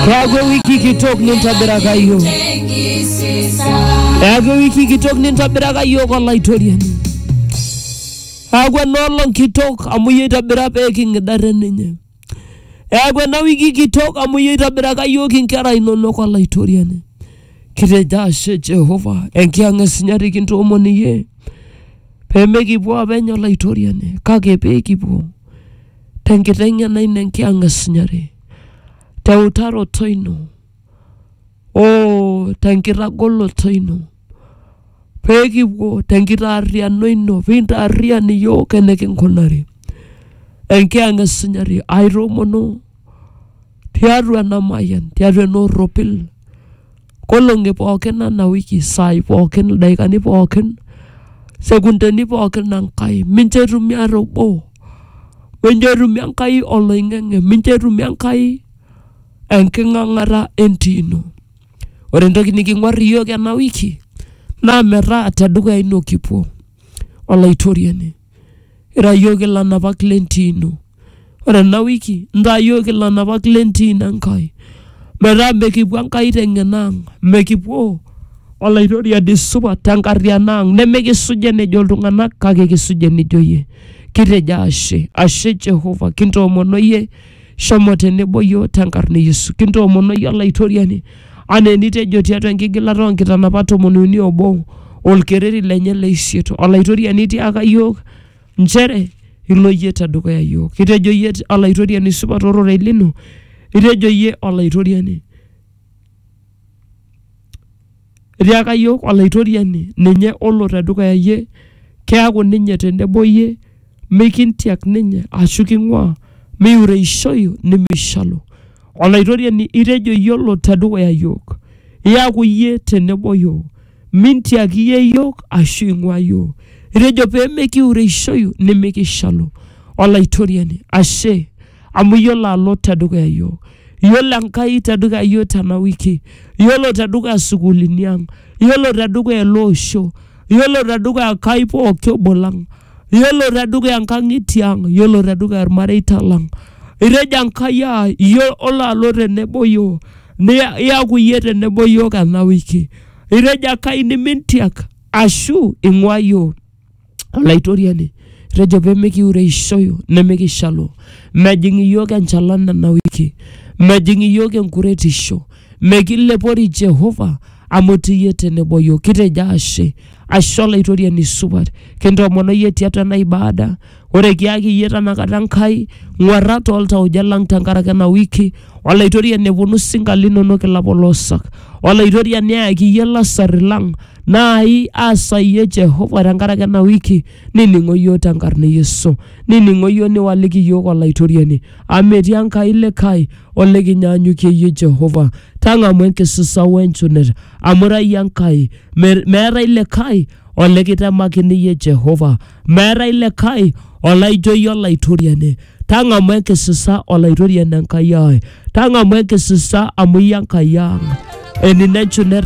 Eaku ewiki kitok nintobiraka yiok. Eaku ewiki kitok nintobiraka yiok Olaitoriani. Eaku enoolong kitok amu iyie oitobira pee king'ida te ninye. Eaku ena wiki kitok amu iyie oitobiraka yiok inkera inonok Olaitoriani. Kitejo ashe Jehova enkiyang'a esinyati kintoomon iyie pee mekipuo apeny Olaitoriani kake pee kipuo tenkiteng'ena ino enkiyang'a esinyati. teutaroto ino o tenkitagoloto ino pee kipuo tenkitaarriano ino pee intaarrian iyiook enikinkunari enkiyang esunyati aitoomono tiatua ena mayian tiatua ena orropil Nkolong'i pookin ena wiki, isaai pookin, ildaikani pookin, sekundeni pookin e Nkai, mincho etumi ata obo, mincho etumi Enkai oloing'ang'e, mincho etumi Enkai enking'ang'ata e ntino. Ore entoki niking'uar iyiok ena wiki naa metaa te dukuya ino kipuo, Olaitoriani. Ira iyiook ilanapak le ntimi. Ore ena wiki intaa iyiook ilanapak le ntimi Enkai metaa mikipuo Enkai teng'eno ang', mikipuo Olaitoriani supat tenkariano ang' nemikisuj enejo iltung'anak kake kisuj enejo iyie. Kitejo ashe, ashe Jehovah, kintoomon oyie Shomo tenebo iyiook tenkarna e Yesu. Kintoomono iyie Olaitoriani anaa enitejo tiatua enkigilata oo nkitanapat tomon uni obo olkereri lenye le isiet. Olaitoriani tiaka iyiook nchere ilo iyie tedukuya iyiook. Itejo iyie Olaitoriani supat ororei lino, itejo iyie Olaitoriani. Etiaka iyiook Olaitoriani ninye olo te dukuya iyie, keaku ninye tenebo iyie, mikintiak ninye ashu king'uaa, miureishoyu nimishalu. Olaitoriani itejo iyie olo te dukuya iyiook, iaku iyie tenebo iyiook, mintiak iyie iyiook ashu ing'uaa iyiook. Itejo pee mikiureishoyu nimikishalu. Olaitoriani, ashe. amu iyiolo alo tedukuya iyiook. Iyiolo Enkai tedukuya iyiook tena wiki, iyiolo tedukuya isukuulini ang', iyiolo tedukuya ele osho, iyiolo tedukuya Enkai pooki obo lang', iyiolo tedukuya inkang'itie ang', iyiolo tedukuya ilmareita lang'. Itejo Enkai aa iyiolo alo tenebo oyiook, iyaku iyie tenebo oyiook ena wiki. Itejo Enkai nimintiak ashu ing'ua iyiook. Olaitoriani, etejo pee mikiureishoyu nimikishalu. Mejing iyiook enchalan nena wiki, mejing iyiook enkuretisho, mekilepori Jehova amu itii iyie tenebo iyiook. Kitejo ashe, ashe Olaitoriani supat, kintoomono iyie tiatua ena ibada, ore kiyaki iyie tenakata Enkai ng'uarrat tooltauja lang tenkaraki ena wiki Olaitoriani neponu sinka linonok ilapolosak. Olaitoriani eyaki iyie lasarri lang naai aasa iyie Jehova tenkaraki ena wiki nining'o iyiook tenkarna e Yesu. Nining'o iyiook niwaliki iyiook Olaitoriani amu metii Enkai likae olikinyaanyukie iyie Jehova. Tang'amu enkisisa wenchunet amu ira iyie Enkai me- meetae likae olikitemakini iyie Jehova. Meetae likae olaijo iyie Olaitoriani. Tang'amu enkisisa Olaitoriani Enkai ai, tang'amu enkisisa amu iyie Enkai ang'. Enino enchula